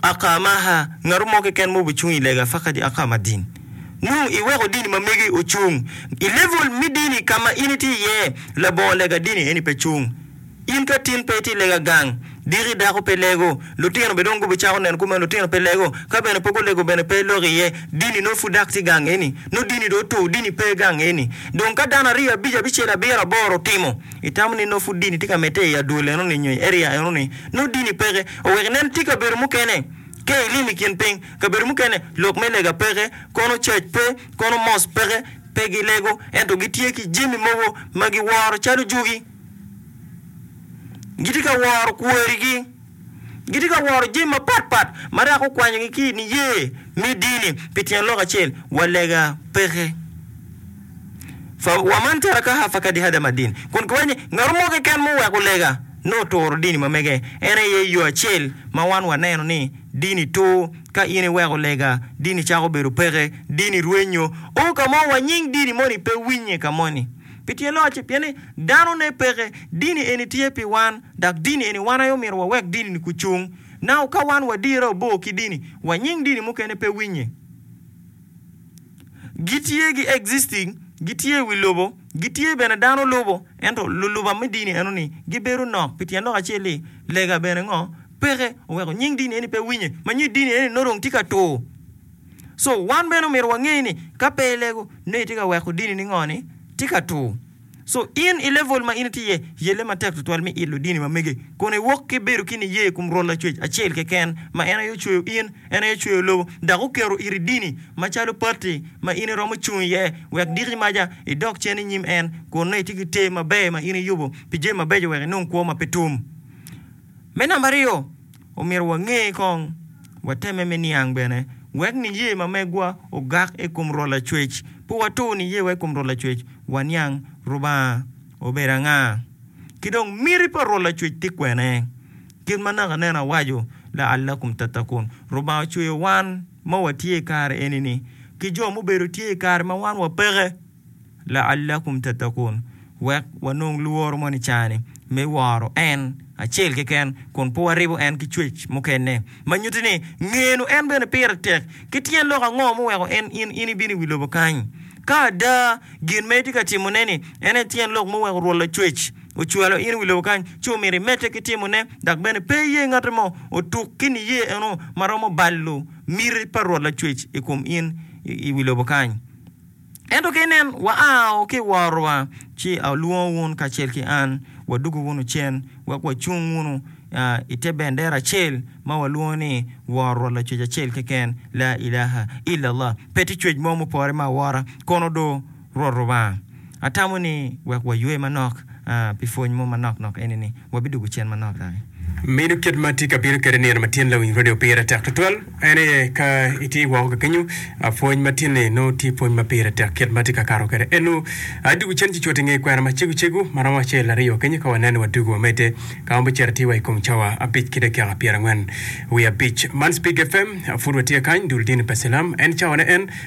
Aka ma aha, ngato mo keken ma obicung i lega fakadi aka ma dini. Nongo iweko dini ma megi ocung. I level me dini ka ma in itye iye, labongo lega dini eni pe cung. In ka tin pe itye i lega gang, diki dako pe lego, lutino bene dong gubicako neno kumeno, lutino pe lego. Ka bene pe gulego bene pe ilok iye. Dini nongo pud dok tye gang eni. Nongo dini dong otur, dini pe gang eni. Dong ka dano aryo, abic, abicel, abiro, aboro otimo, itamo ni nongo pud dini tye ka medde i adwol enoni nyo i area enoni? Nongo dini peke. Owek inen tye kabedo mukene ka ilim i kin piny, kabedo mukene lok me lega peke, kono cac pe, kono mos peke. Pe gilego, ento gitye ki jami mogo ma giworo calo jugi. Gitye ka woro kworigi. Gitye ka woro jami mapat pat ma dok okwanyogi ki i niye me dini pi tyen lok acel, wa lega peke. Wa man calo Kahafa kadi Hada ma dini, kun kiwaco ni, Ngat mo keken ma oweko lega nongo oturo dini ma mege. En aye yo acel ma wan waneno ni dini tur. Ka in iweko lega, dini cako bedo peke, dini rwenyo. O, ka mo wa nying dini moni pe winye ka moni. Pi tyen loc-ci, pien ni danone peke, dini eni tye pi wan, dok dini eni wan aye omyero wawek dini-ni gucung. Now, ka wan wadirre obor ki dini, wa nying dini mukene pe winye. Gitye gi existing, gitye i wi lobo, gitye bene dano lubo, ento luluba me dini eno ni gibedo nok pi tyen lok acel ni lega bene ngo peke oweko nying dini eni pe winye ma nyo dini eni nongo dong tye ka tur. So wan bene omyero wange ni ka pe ilego nongo itye ka weko dini ni ngo ni tye ka tur. Co, In i level ma in itye iye, yelle matek tutwal me ilo dini ma mege, kun iwok ki bedo ki niye i kom Rwot Lacwec acel keken, ma en aye ocweyo in, en aye ocweyo lobo, dok oketo iri dini macalo pati ma in iromo cung iye, wek diki maca idok cen i nyim en, kun nongo itye ki ter maber ma in iyubo pi jami mabeco wek inong kwo ma pe tum. Me namba aryo, omyero wange kong, watemme me niang bene, wek niye ma megwa ogak i kom Rwot Lacwec. Pe watur niyewa i kom Rwot Lacwec, waniang Rubanga obedo anga, ki dong miti pa Rwot Lacwec ti kwene. Kit ma naka nen awaco laalla kom tatta kun, Rubanga ocweyo wan ma watye i kare eni-ni ki jo mubedo tye i kare ma wan wapeke. La'allakum tattaqun, Wek wanong lworo moni cani me woro En acel keken kun pe waribo En ki cwec mukene. Ma nyuti ni, ngenu En bene pire tek. Ki tyen lok ango muweko en in in ibino i wi lobo kany? Ka ada gin ma itye ka timone-ni en aye tyen lok muweko Rwot Lacwec ocwalo in i wi lobo kany, ci omyero imedde ki timone. Dok bene pe iye ngatti mo otuk ki niye eno ma romo balo miti pa Rwot Lacwec i kom in i wi lobo kany. Ento ka inen, waao ki i worowa, ci alwongo wun kacel ki an, wadugo wunu cen, wek wacung wunu i te bendera acel ma walwongo ni Worowa Lacwec Acel Keken, La Ilaha Illallah. Pe tye cwec mo mupore me awora, kono do Rwot Lubanga. Atamo ni wek waywe manok pi pwony mo manok nok eni-ni. wabidwogo cen manok daki. Meno kit ma tika abino kede nino ma tyen lawinyroni opire tek twatwal? En aye, ka itye woko ka kenyo, pwony ma tyen-ni nongo tye pwony ma pire tek kit ma tye ka kato kwede. Eno, dwogo cen cucut i nge kwena macego cego ma romo acel, aryo kenyo ka waneno wa dwogo wamedde ka wamito cito ati wa i kom cawa abic ki dakika pyerangwen wiye abic. Man Spigga FM, pud watye kany, dul dini pa cilam, en cawane en.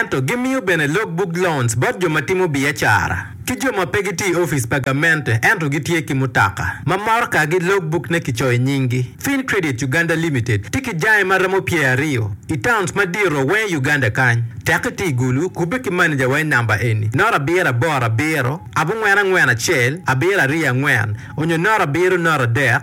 Ento gimiyo bene log buk loans bot jo ma timo biacara ki jo ma pe gitye i ofice pa gamente ento gitye ki mutoka ma morokagi log bukne kicoyo nyinggi. Fin Credit Uganda Limited tye ki jange ma romo pyer aryo i towns madito weng i Uganda kany. Tek iti i Gulu, kubbe ki maneja wa i namba eni, noto abiro aboro abiro, abongwen angwen acel, abiro aryo angwen, onyo noto abiro noto adek.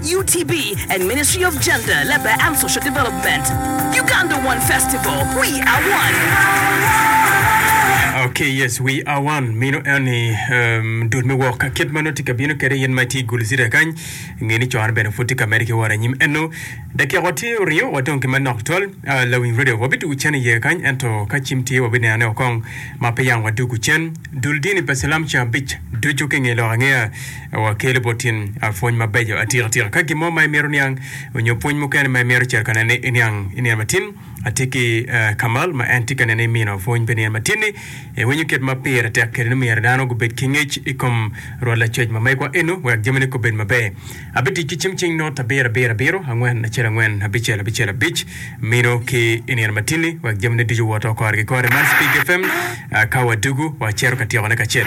UTB and Ministry of Gender, Labour and Social Development, Uganda One Festival, We Are One. Ok, yes, we are one. Mino en ni um, dul me wok ka kit ma nongo tye ka bino kede in ma itye i Gulzira kany. Nge ni con bene pud tye ka mede ki woro anyim eno. Dakika wa tye oryo wa dong ki manok twal. Uh, lawiny radio wa bidugu cen iye kany ento ka cim tye wa bineno ne okong ma pe yang wa dugu cen. Dul dini pa silam ca abic ducu ki nge lok angea. Wakeli bot tin a pwony mabeco atika tika. Ka gin mo ma imito niang onyo pwony mukene ma imito cito ka nene iniang i nino matin, atye ki Kamal ma en tye ka nene imino pwony pi nino matin ni, Iwinyo kit ma pire tek kede ni myero dano gubed ki ngec i kom rwot lacoc ma megwa eno wek jamine gubed maber. Abitic ki cim cing not abiro abiro abiro angwen acel angwen abicel abicel abic mino ki i nino matin-ni wek jamine ducu woto kore ki kore man Spig FM ka wadugu wacito ka tyekone kacel.